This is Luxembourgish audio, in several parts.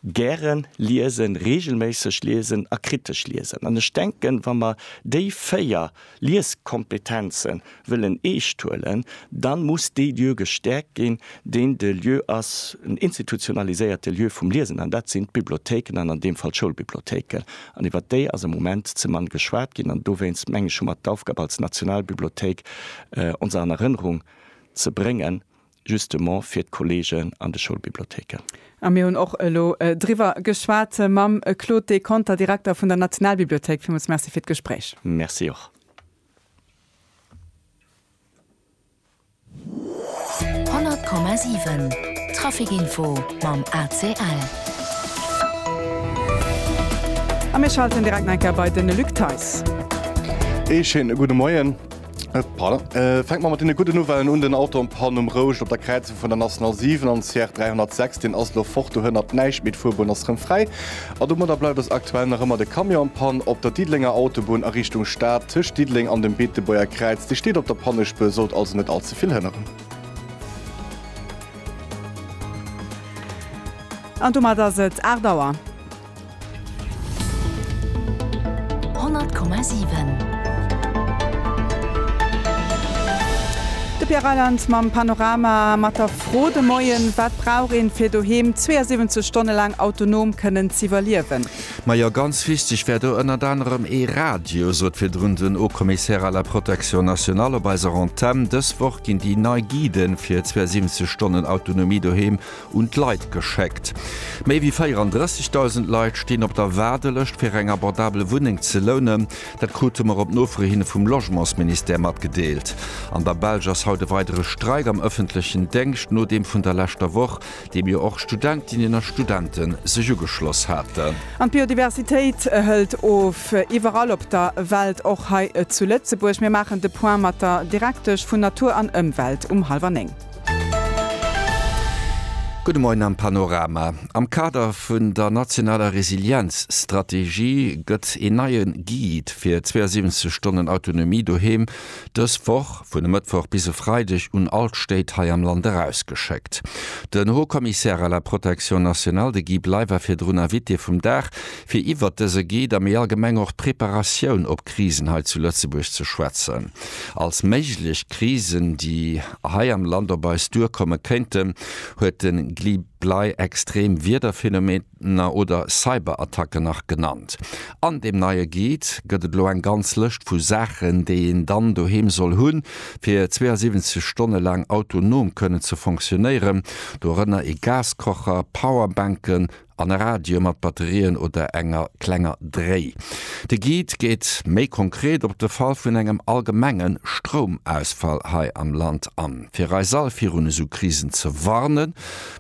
Gären liesen, regelméisseg liesen a kritesch liesen. An ech denken, wa mer déi véier Lieskompetenze wëllen eescht huelen, da muss dee Lieu gestäerkt ginn, deen de Lieu ass, en institutionaliséierte Lieu vum Liesen, an dat sinn d'Bibliothéiken an an deem Fall d'Schoulbibliothéiken. An iwwert déi ass am Moment ze mann geschwat ginn. An dowéinst, meng ech, hu mer d'Aufgab als Nationalbibliothéik ons an Erënnerung ze bréngen, justement fir d'Kollegen an de Schoulbibliotheken. A mir hunn och elo driwwer geschwat mam Claude Deconter, Direkter vun der Nationalbibliothéik. Villmools Merci fir d'Gespréich. Merci och. Honnert Komma siwen, Trafikinfo mam ACL. A mir schalten direkt nach eng Kéier bei den Luc Theis. Ee schéine gudde Moien. Fänke mer mat deene gudden Nouvellen un, Den Auto am Panne um Rouscht op der Kräizung vun der National 7 an CR 306, deen ass elo fort, dohënnert näischt méi. D'Fuerbunn ass rëm fräi a domadder bleift ass aktuell nach ëmmer de Camion am Panne op der Diddelenger Autobunn a Richtung Stad, tëscht Diddeleng an dem Beetebuerger Kräiz. Dee steet op der Pannespuer, sollt also net all ze vill hënneren. An domat ass et 8 Auer. De Pierre Reyland mam Panorama mat der Fro de Moien, Wat brauch een, fir doheem 72 Stonne laang autonom kënnen z'iwwerliewen? Majo, ganz wichteg wär do ënnert anerem ee Radio, sot virdrun den Haut-Commissaire à la Protection nationale op eiser Antenn. Dës Woch ginn déi nei Guiden fir 72 Stonnen Autonomie doheem un d'Leit geschéckt. Méi wéi 34.000 Leit stinn op der Waardelëscht fir eng abordabel Wunneng ze lounen. Dat krute mer op Nofro hin vum Logementsministère matgedeelt. An der Belsch ass haut e weidere Streik am ëffentlechen Déngscht no deem vun der leschter Woch, deem jo och Studentinnen a Studente sech ugeschloss haten. An d'Biodiversitéit hëlt of, iwwerall op der Welt, och hei zu Lëtzebuerg. Mir maachen de Point mat der Direktesch vun Natur an Ëmwelt um hallwer néng. Gudde Moien am Panorama. Am Kader vun der nationaler Resilienzstrategie gëtt een neie Guide fir 72 Stonnen Autonomie doheem dës Woch, vun e Mëttwoch bis e Freideg, un all d'Stéit hei am Land erausgeschéckt. Den Haut Commissaire à la protection nationale, de Guy Bley, war virdrun Invité vum Dag, fir iwwert dëse Guide a méi allgemeng och d'Preparatioun op Krisen hei zu Lëtzebuerg ze schwätzen. Als méiglech Krisen, déi. hei am Land op eis duerkomme kéinten, huet de Gli Blei extrem Wiederphenomener oder Cyberattacken nach genannt. An deem neie Guide gëtt et elo eng ganz Lëscht vu Saachen, déi een dann doheem soll hunn, fir 72 Stonne laang autonom kënnen ze fonctionéieren, dorënner ee Gaskocher, Powerbänken, an e Radio mat Batterien oder enger klenger Dréi. De Guide geet méi konkret op de Fall vun engem allgemenge Stroumausfall hei am Land an. Fir eis all virun esou Krisen ze warnen,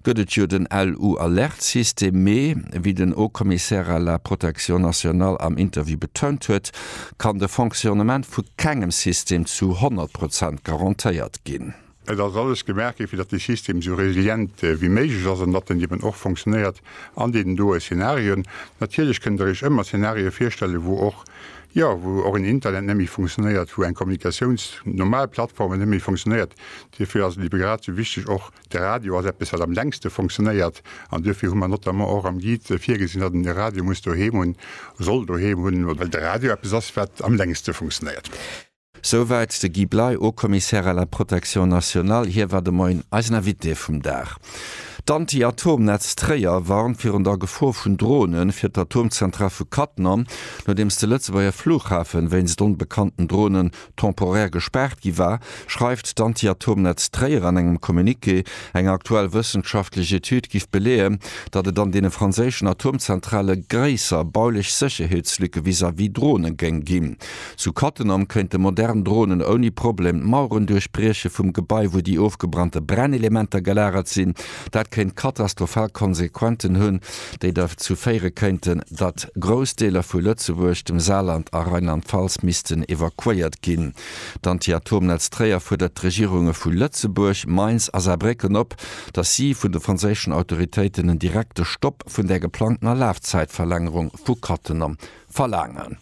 gëtt et jo den LU-Alerte-System, mee wéi den Haut-Commissaire à la protection nationale am Interview betount huet, kann de Fonctionnement vu kengem System zu 100 Prozent garantéiert ginn. Et ass alles gemaach gi fir datt dee System esou resilient wéi méiglech ass an datt en eben och fonctionnéiert an deenen doe Szenarien. Natierlech kënnt der iech ëmmer Szenarie virstellen, wou och, jo, wou och en Internet net méi fonctionnéiert, wou eng Kommunikatiouns, normal Plattformen net méi fonctionnéiert. Duerfir ass et ebe grad esou wichteg och, de Radio ass eppes wat am längste fonctionnéiert an duerfir hu mer notamment och am Guide virgesinn, datt een de Radio muss doheem hunn, soll doheem hunn, well de Radio eppes ass wat am längste fonctionnéiert. Souwäit de Guy Bley, Haut-Commissaire à la Protection nationale. Hie war de Moien eisen Invité vum Dag. D'Anti-Atom-Netz Tréier warnt virun der Gefor vun Drone fir d'Atomzentral vu Cattenom, nodeems de Lëtzebuerger Flughafen wéinst onbekannten Drone temporaire gespaart gi war, schreift d'Anti-Atom-Netz Tréier an engem Communiqué. Eng aktuell wëssenschaftlech Etüd giff beleeën, datt et an deene franséischen Atomzentrale gréisser baulech Sécherheetslücke vis-à-vis Drone géing ginn. Zu Cattenom këinte modern Dronen ouni Problem d'Maueren duerchbrieche vum Gebai, wou déi ofgebrannte Brennelementer gelagert sinn. Dat kéint katastrophal Konsequenten hunn, déi derzou féiere kéinten, datt grouss Deeler vu Lëtzebuerg, dem Saarland a Rheinland-Pfalz missten evakuéiert ginn. D'Anti-Atom-Netz Tréier fuerdert d'Regierunge vu Lëtzebuerg, Mainz a Saarbrécken op, datt si vun de franséischen Autoritéiten en direkte Stopp vun där geplangtener Lafzäitverlängerung vu Cattenom verlaangen.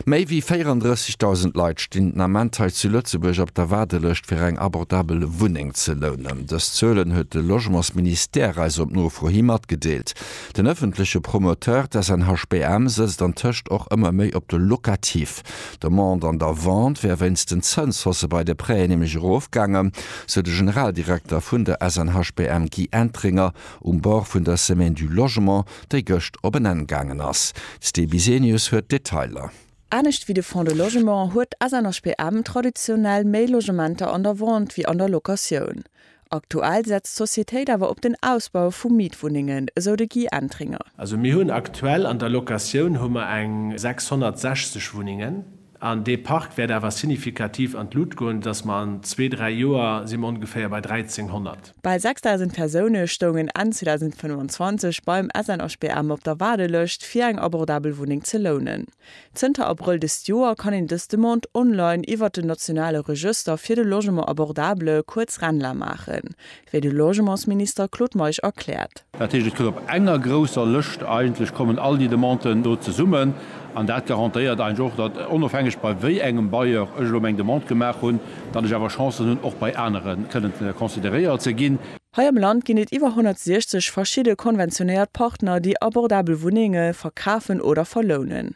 Méi wéi 34.000 Leit stinn den Ament hei zu Lëtzebuerg op der Waardelëscht fir eng abordabel Wunneng ze lounen. Dës Zuelen huet de Logementsministère eis op Nofro hi matgedeelt. Den ëffentleche Promoteur, d'SNHBM, sëtzt antëscht och ëmmer méi op de Locatif. D'Demande an der Vente wär wéinst den Zënshausse bei de Prêten nämlech erofgaangen, sou de Generaldirekter vun der SNHBM Guy Entringer um Bord vun der Semaine du Logement. déi gëscht op en Enn gaangen ass. D'Sti Bisenius huet d'Detailer. Anescht wéi de Fonds de Logement huet d'SNHPM traditionell méi Logementer an der Vente wéi an der Locatioun. Aktuell setzt d'Societéit awer op den Ausbau vu Mietwunnengen, esou de Guy Entringer. Also mir hunn aktuell an der Locatioun hu mer eng 660 Wunnengen. An dee Park wäert awer signifikativ an d'Lut goen, sodass mer an zwee, dräi Joer si mer ongeféier bei 1.300. Bal 6.000 Persoune stoungen Enn 2025 beim SNHBM op der Waardelëscht, fir eng abordabel Wunneng ze lounen. Zënter Abrëll dëst Joer kann een dës Demande online iwwert den nationale Regëster fir de Logement abordable, kuerz Renla, maachen. wéi de Logementsminister Claude Meisch erkläert. Dat heescht, et gëtt op enger grousser Lëscht, eigentlech kommen all déi Demanden do zesummen an dat garantéiert eigentlech och, datt, onofhängeg bei wéi engem Bailleur ech elo meng Demande gemaach hunn, datt ech awer Chancen hunn, och bei anere kënnen consideréiert ze ginn. Hei am Land ginn et iwwer 160 verschidde konventionéiert Partner, déi abordabel Wunnenge verkafen oder verlounen.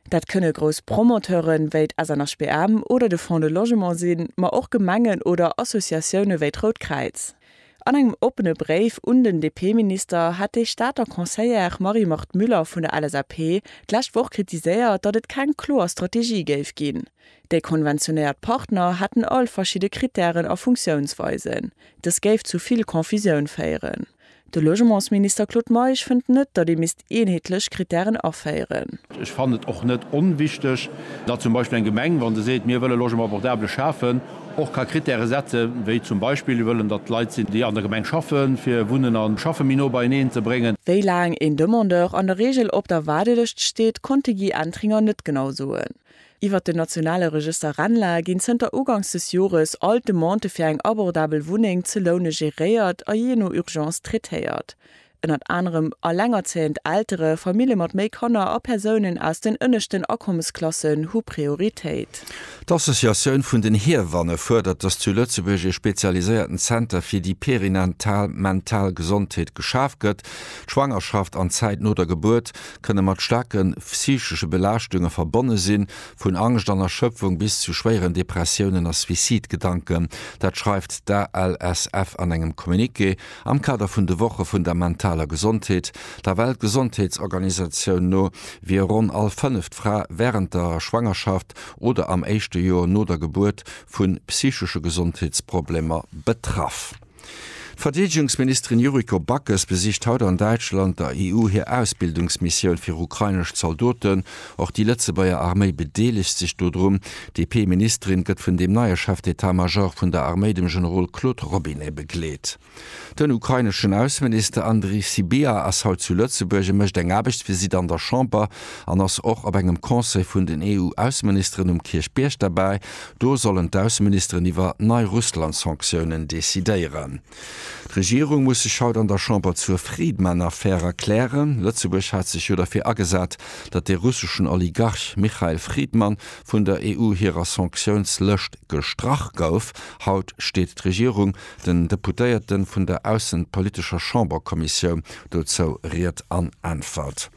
Dat kënne grouss Promoteure wéi d'SNHBM oder de Fonds de Logement sinn, ma och Gemengen oder Associatioune wéi d'Rout Kräiz. An engem oppene Bréif un den DP-Minister hat déi Stater Conseillère Marie-Marthe Müller vun der LSAP d'lescht Woch kritiséiert, datt et keng kloer Strategie géif ginn. Déi konventionéiert Partner hätten all verschidde Krittären a Funktiounsweisen. Dës géif zu vill Confusioun féieren. De Logementsminister Claude Meisch fënnt net, datt ee misst eenheetlech Krittären aféieren. Ech fannen et och net onwichteg, datt zum Beispill eng Gemeng, wa se seet, mir wëlle Logement abordable schafen, och ka Krittäre setzen, wéi zum Beispill, mir wëllen, datt et Leit sinn, déi an der Gemeng schaffen, fir Wunnen a Schaffe méi no beieneen ze bréngen. Wéi laang een Demandeur an der Reegel op der Waardelëscht steet, konnt de Guy Entringer net genau soen. Iwwert den nationale Regëster RENLA ginn zënter Ugangs des Jores all d'Demandë fir eng abordabel Wunneng ze loune geréiert a jee no Urgence traitéiert. Ënnert anerem ellengerzéiend Eltere, Famille mat méi Kanner a Persounen aus den ënneschten Akommesklassen hu Prioritéit. D'Associatioun vun den Hiewanne fuerdert, datt zu Lëtzebuerg ee spezialiséierten Zenter fir déi perinatal mental Gesondheet geschaf gëtt. D'Schwangerschaft an d'Zäit no der Gebuert kënne mat staarke psychesche Belaaschtunge verbonne sinn, vun Angscht an Erschöpfung bis zu schwéieren Depressiounen a Suicidgedanken. Dat schreift d'ALSF an engem Communiqué am Kader vun de Woche vun der mentaler Gesondheet. Der Weltgesondheetsorganisatioun no wier ronn all fënneft Fra wärend der Schwangerschaft oder am éischte Joer no der Gebuert vu psychesche Gesondheetsproblemer betraff. D'Verdeedegungsministerin Yuriko Backes besicht haut an Däitschland der EU hir Ausbildungsmissioun fir ukrainesch Zaldoten. Och déi Lëtzebuerger Arméi bedeelegt sech dodrun. D'DP-Ministerin gëtt vun dem neie Chef d'Etat Major vun der Arméi, dem Generol Claude Robinet begleet. Den ukraineschen Ausseminister Andrii Sybiha ass haut zu Lëtzebuerg. E mécht eng Aarbechtsvisitt an der Chamber an ass och op engem Conseil vun den EU-Ausseministeren um Kierchbierg derbäi. Do sollen d'Ausseministeren iwwer nei Russland-Sanktiounen decidéieren. D'Regierung muss sech haut an der Chamber zur Friedman-Affär erklären. Lëtzebuerg hat sech jo derfir agesat, datt de russeschen Oligarch Michael Friedman vun der EU hirer Sanktiounslëscht gestrach gouf. Haut steet d'Regierung den Deputéierte vun der aussenpolitescher Chamberkommissioun dozou Ried an Äntwert.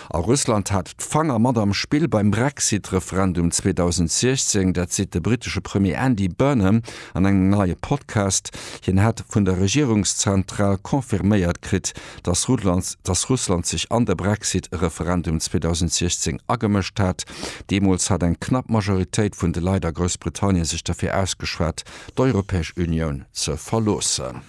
A Russland hat d'Fanger mat am Spill beim Brexit-Referendum 2016. Dat seet de brittesche Premier Andy Burnham an engem neie Podcast. Hien hätt vun der Regierungszentral confirméiert kritt, datt Russland sech an de Brexit-Referendum 2016 agemëscht hat. Deemools hat eng knapp Majoritéit vun de Leit a Groussbritannien sech derfir ausgeschwat, d'Europäesch Unioun ze verloossen.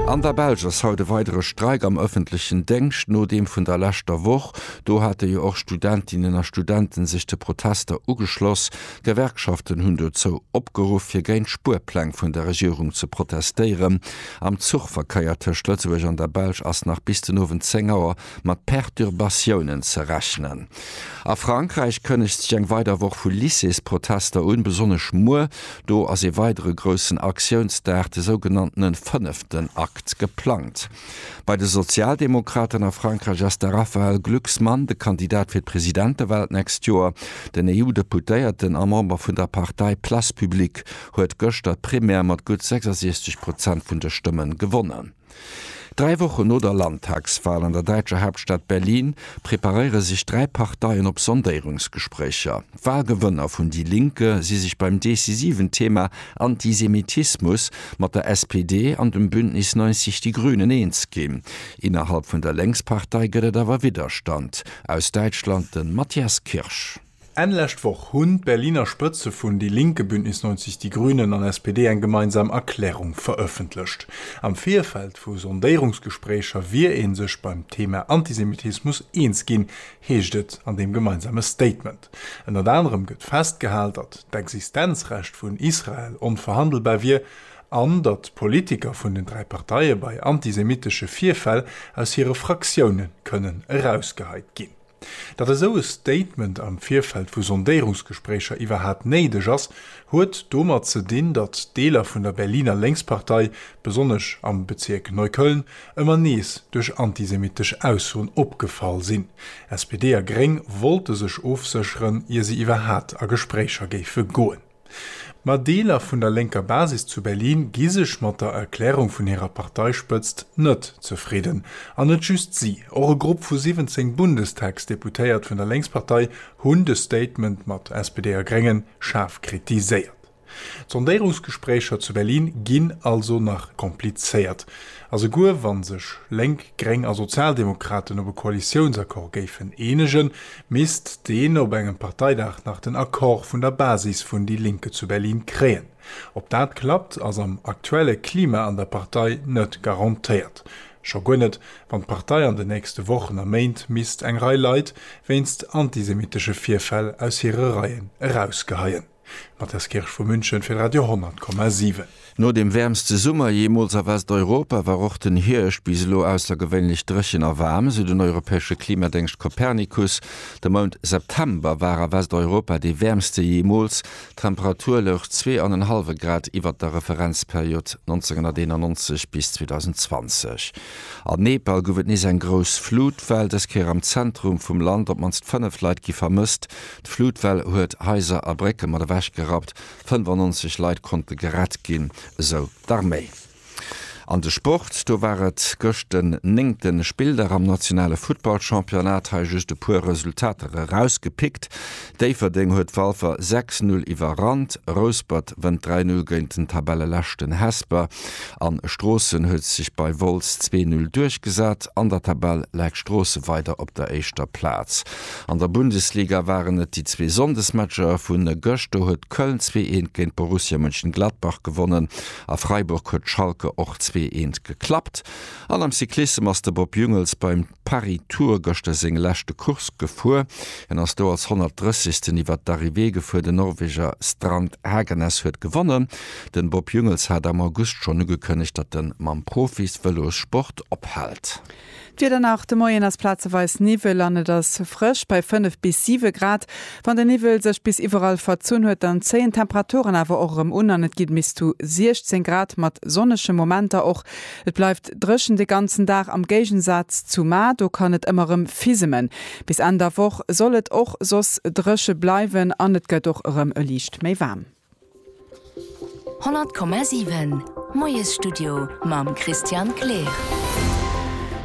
An der Belsch ass haut e weidere Streik am ëffentlechen Déngscht no deem vun der leschter Woch. Do hate jo och Studentinnen a Studenten sech de Protester ugeschloss. D'Gewerkschaften hunn dozou opgeruff, fir géint d'Spuerpläng vun der Regierung ze protestéieren. Am Zuchverkeier tëscht Lëtzebuerg an der Belsch ass nach bis den Owend 10 Auer mat Perturbatiounen ze rechnen. A Frankräich kënnegt sech eng weider Woch vu Lycées-Protester un, besonnesch muer. Do ass ee weidere groussen Aktiounsdag, de sougenanntene fënneften Akt, geplangt. Bei de Sozialdemokraten a Frankräich ass de Raphaël Glucksmann de Kandidat fir d'Presidentewal d'nächst Joer. Den EU-Deputéierten a Member vun der Partei Place Publique huet gëschter d'Primaire mat gutt 66 Prozent vun de Stëmmen gewonnen. Dräi Wochen no der Landtagswal an der däitscher Haaptstad Berlin preparéiere sech dräi Parteien op Sondéierungsgespréicher. D'Walgewënner vun Die Linke si sech beim decisiven Thema Antisemitismus mat der SPD an dem Bündnis 90 Die Grünen eens ginn. Innerhalb vun der Lénkspartei gëtt et awer Widderstand aus Däitschland, de Matthias Kirsch. Enn lescht Woch hunn d'Berliner Spëtze vun Die Linke, Bündnis 90, Die Grünen an SPD eng gemeinsam Erklärung verëffentlecht. Am Virfeld vu Sondéierungsgespréicher wier ee sech beim Thema Antisemitismus eens ginn, heescht et an deem gemeinsame Statement. Ënnert anerem gëtt festgehal, datt d'Existenzrecht vun Israel onverhandelbar wier an datt d'Politiker vun den dräi Parteie bei antisemitesche Virfäll aus hire Fraktioune kënnen erausgeheit ginn. Datt esou e Statement am Virfeld vu Sondéierungsgespréicher iwwerhat néideg ass, huet domat ze dinn, datt Deeler vun der Berliner Lénkspartei, besonnesch am Bezierk Neukölln, ëmmer nees duerch antisemittesch Aussoen opgefall sinn. SPD a Gréng wollte sech ofsécheren, ier se iwwerhat a Gespréicher géife goen. Ma Deeler vun der lénker Basis zu Berlin gi sech mat der Erklärung vun hirer Parteispëtzt net zefridden. An net just si, och e Grupp vu 17 Bundestagsdeputéiert vun der Lénkspartei hunn de Statement mat SPD a Gréngen schaarf kritiséiert. D'Sondéirungsgespréicher zu Berlin ginn also nach komplizéiert. A souguer wann sech Lénk, Gréng a Sozialdemokraten op e Koalitiounsaccord géifen eenegen, misst deen op engem Parteidag nach den Accord vun der Basis vun déi Linke zu Berlin kréien. Ob dat klappt, ass am aktuelle Klima an der Partei net garantéiert. Scho guer net, wann d'Partei an den nächste Wochen a Méint misst eng Rei Leit wéinst antisemitesche Virfäll aus hire Reien erausgeheien. D'Matthias Kirsch vu München fir Radio 10,7. No dem wäermste Summer jeemools a Westeuropa war och den Hierscht bis elo aussergewéinlech dréchen a waarm, sou den europäesche Klimadéngscht Copernicus. De Mount September war a Westeuropa dee wäermste jeemools, d'Temperatur louch zwee an en hallwe Grad iwwert der Referenzperiod 1991 bis 2020. An Nepal gouf et nees eng grouss Flutwell, dës Kéier am Zentrum vum Land. Op d'mannst fënnef Leit gi vermësst, D'Flutwell huet Haiser a Brécke mat ewech gerappt, 95 Leit konnte gerett ginn, esou d'Arméi. An de Sport, do war et gëscht den néngte Spilldag am nationale Futtballchampionnat. Hei just e puer Resultater erausgepickt, Déifferdeng huet Walfer 6, 0 iwwerrannt, Rouspert wënnt 3, 0 géint den Tabelleleschten Hesper an Stroossen huet sech bei Wolz 2, 0 duerchgesat. An der Tabell läit Stroosse weider op der éischter Plaz. An der Bundesliga waren et déi zwee Sonndesmatcher vu gëscht. Do huet Köln zwee eent géint Borussia Mönchengladbach gewonnen a Freiburg huet Schalke och zwee eent geklappt. An am Cyclissem ass de Bob Jungels beim Paris-Tour gëschter seng leschte Course gefuer. Hien ass do als 130. iwwert d'Arrivée gefuer. Den Norweger Strand Hagenes huet gewonnen. Den Bob Jungels hat am August schonn ugekënnegt, datt en mam Profis-Vëlossport ophält. D'Wieder nach, De Moien ass plazeweis Niwwel an et ass frësch bei 5 bis 7 Grad. Wann den Niwwel sech bis iwwerall verzunn huet, dann zéien d'Temperaturen awer och erëm un an et geet bis zu 16 Grad mat sonnege Momenter och. Et bleift dréchen de ganzen Dag am Géigensaz zu Mar, do kann et ëmmer erëm fisemen. Bis Enn der Woch soll et och soss dréche bleiwen an et gëtt och erëm e liicht méi waarm. 100,7 Moiesstudio mam Christian Kleer.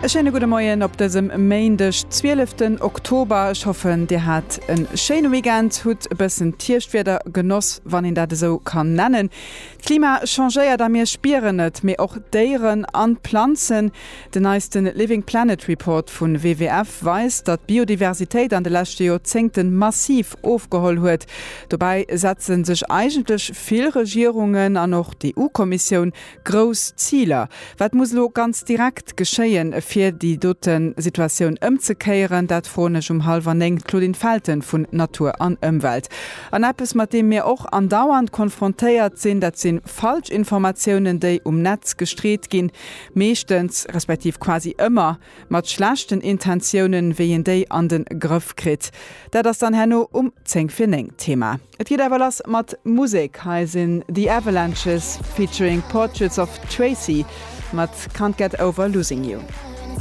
E schéine gudde Moien op dësem Méindeg, 12 den Oktober. Ech hoffen, Dir hat e schéine Weekend, hutt e bëssen d'Hierschtwieder genoss, wann een dat esou kann nennen. D'Klima changéiert a mir spieren et, mee och d'Déieren an d'Planzen. Den neiste Living Planet Report vu WWF weist, datt d'Biodiversitéit an de leschte Joerzéngte massiv ofgeholl huet. Dobäi setze sech eigentlech vill Regierungen an och d'EU-Kommissioun grouss Ziler. Wat muss elo ganz direkt geschéien, fir déi dote Situatioun ëmzekéieren? Dat froen ech um hallwer néng d'Claudine Felten vun Natur an Ëmwelt. An eppes, mat deem mir och andauernd konfrontéiert sinn, dat si falsch Informatiounen, déi um Netz gestreet ginn. meeschtens, respektiv quasi ëmmer, mat schlechten Intentiounen, wéi een déi an de Grëff kritt. Dat ass dann herno um zéng vir néng d'Thema. Et geet awer lass mat Musek, hei sinn The Avalanches featuring Portraits of Tracy mat Can't Get Over Losing You.